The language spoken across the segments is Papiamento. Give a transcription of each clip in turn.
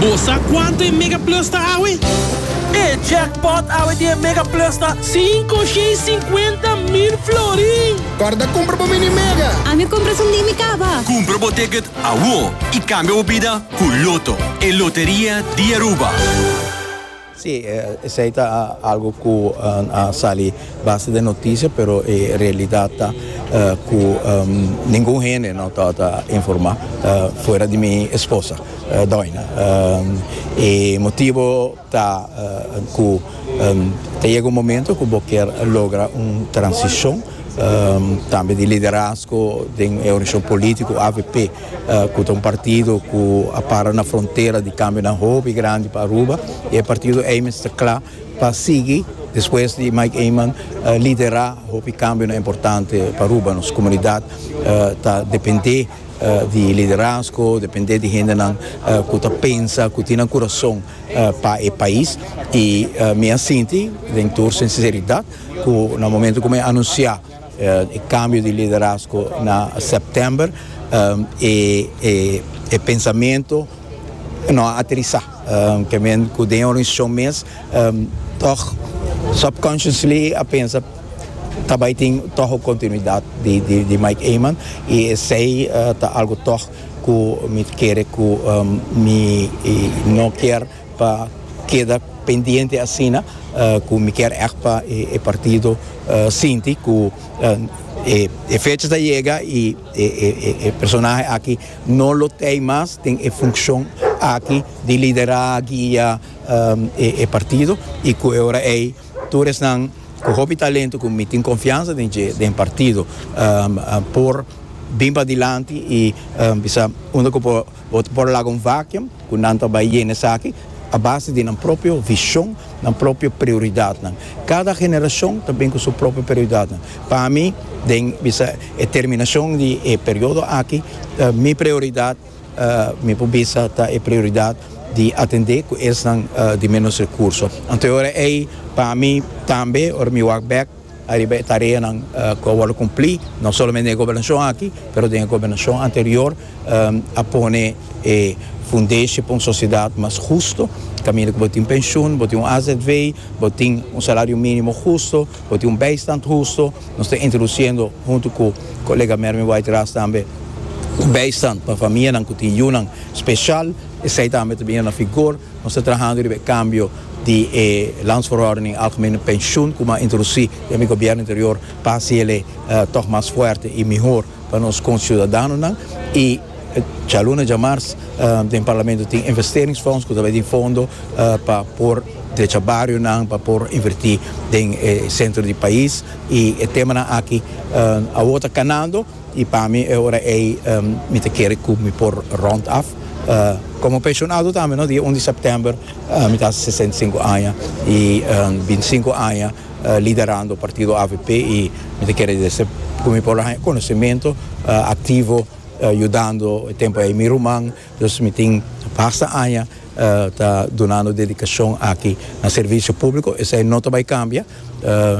Bo sa kuantu e Mega Plus ta awe? E jackpot awe di e Mega Plus ta. Sinku shei sinkuenta mil florin! Kòrda kumpra bo Mini Mega! Ami kumpra su Mimi kaba! Kumpra bo ticket awo i kambia bo bida ku Lotto, e loteria di Aruba! Sí, esei ta algu ku a sali base den notisia, pero e realidat ta ku ningun hende no ta ota informá fuera di mi esposa, doina. E motibu ta ku ta yega un momento ku bo kier logra un transishon tambe di liderazgo den e organishashon polítiko avp. Cu ta un partido cu a para na frontera di cambionan hopi grandi pa Aruba y e partido ey mes ta cla pa sigui despues di Mike Eman lidera hopi cambionan importante pa Aruba. Nos comunidad ta depende di e liderazgo, depende di hendenan cu ta pensa, cu tin nan curason pa e pais y mi a sinti den tur sinceridad cu na momento cu mi a anuncia. E cambio di liderazgo na september e pensamento no a aterisa, ke men ku den e organisacion mes tog subconsciously a pensa ta bai tin tog un continuidad di Mike Eman y esey ta algo tog ku mi ta kere ku mi no kier. Pa keda pendiente asina ku mi kier ègt pa e partido sinti ku e fecha ta yega i e personahe aki no lo tei mas den e funshon aki di liderá, guia e partido i ku e ora ei tur esnan ku hopi talento ku mi tin konfiansa den dje den partido por bin padilanti i bisa unda ku por. Bo por laga un vacuum cu nan ta bay yena esaki a base di nan propio vision, nan propio prioridadnan. Cada generacion ta bin cu su propio prioridadnan. Pa mi, den bisa e terminacion di e periodo aki, mi prioridad mi por bisa ta e prioridad di atende cu esnan di menos recurso. Anto e ora ey pa mi tambe ora mi wak bek. Ariba e tareanan ku a wòrdu kumplí, no solamente den e gobernashon aki, pero den e gobernashon anterior, a pone e fundeshi pa un sosiedat mas hustu, kaminda ku bo tin penshun, bo tin un azv, bo tin un salario mínimo hustu, bo tin un bijstand hustu. Nos ta introdusiendo, huntu ku kolega Mervin Whiteras tambe, un bijstand pa famianan ku tin yunan speshal, esei tambe ta bini na vigor. Nos ta trahando riba e kambio di e Landsverordening Algemene Pensioen ku bo a introdusí den mi gobièrnu anterior pa hasi el'e tòg mas fuerte i mihor pa nos konsiudadanonan. I Cha Luna djamars den Parlamento tin investeringsfonds ku ta bai tin fondo pa por drecha barionan, pa por invertí den e sentro di pais i e temanan aki awor ta kanando. I pa mi e ora ei mi ta kere ku mi por rònt af. Komo penshonado tambe no, dia un di sèptèmber mi ta hasi sesenta i sinku aña i bintisinku aña liderando partido avp i mi ta kere dese ku mi por haña konosementu aktivo yudando e tempu ei mi ruman. Nos mi tin basta aña ta dunando dedicashon aki na servicio publico, esai no ta bai cambia,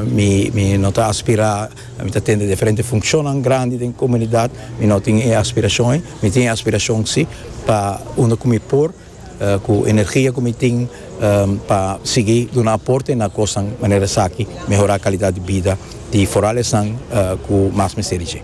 mi no ta aspira, mi ta tende diferente funccionnan grandi den comunidad, mi no tin e aspiracion ei, mi tin e aspiracion si pa unda cu mi por cu energia cu mi tin pa sigui duna aporte na cosnan manera esaki, mehora calidad di bida di foral esnan cu mas mester di dje.